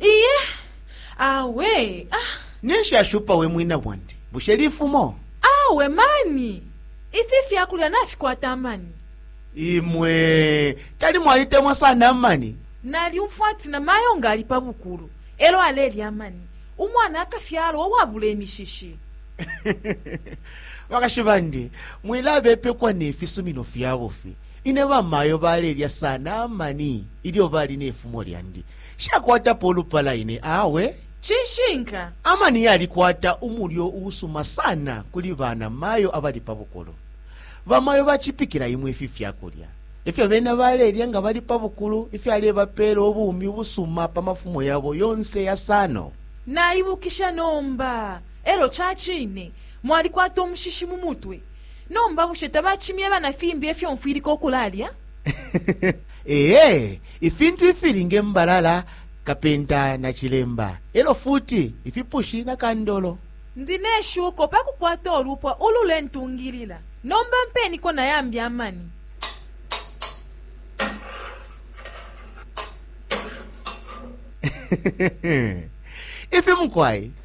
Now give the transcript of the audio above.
Iye, awe, ah. Ninshi ashupa we mwina bwandi? Bushe lifumo? Awe mani! Ifi fyakulya nafikwata amani. Imwe, tali mwalitemwa sana amani? Nalyumfwa ati na mayo nga ali pa bukulu, elo alelya amani, umwana akafyalwa uwabula imishishi. Bakashi bandi, mwilabepekwa ne fisumino fyabufi. Ine bamayo balelya sana amani ilyo bali ne fumo lyandi. Nshakwatapo ulupala ine awe. Cishinka, amani yalikwata umulyo uusuma sana kuli bana mayo abali pa bukulu. Bamayo bacipikila imwe ifi fyakulya efyo bena balelya nga bali pa bukulu ifyalebapela ubumi ubusuma pa mafumo yabo yonse yasano. Naibukisha nomba, elo cacine mwalikwata umushishi mu mutwe. Nomba bushe tabacimyeba na fimbi efyo mfwilika ukulalya? Ee, ifintu ifili nge mbalala, kapenta na cilemba, elo futi ifipushi na kandolo. Ndi ne shuko pakukwata ulupwa ulule ntungilila. Nomba mpeniko na yambi amani. Ifi mukwai.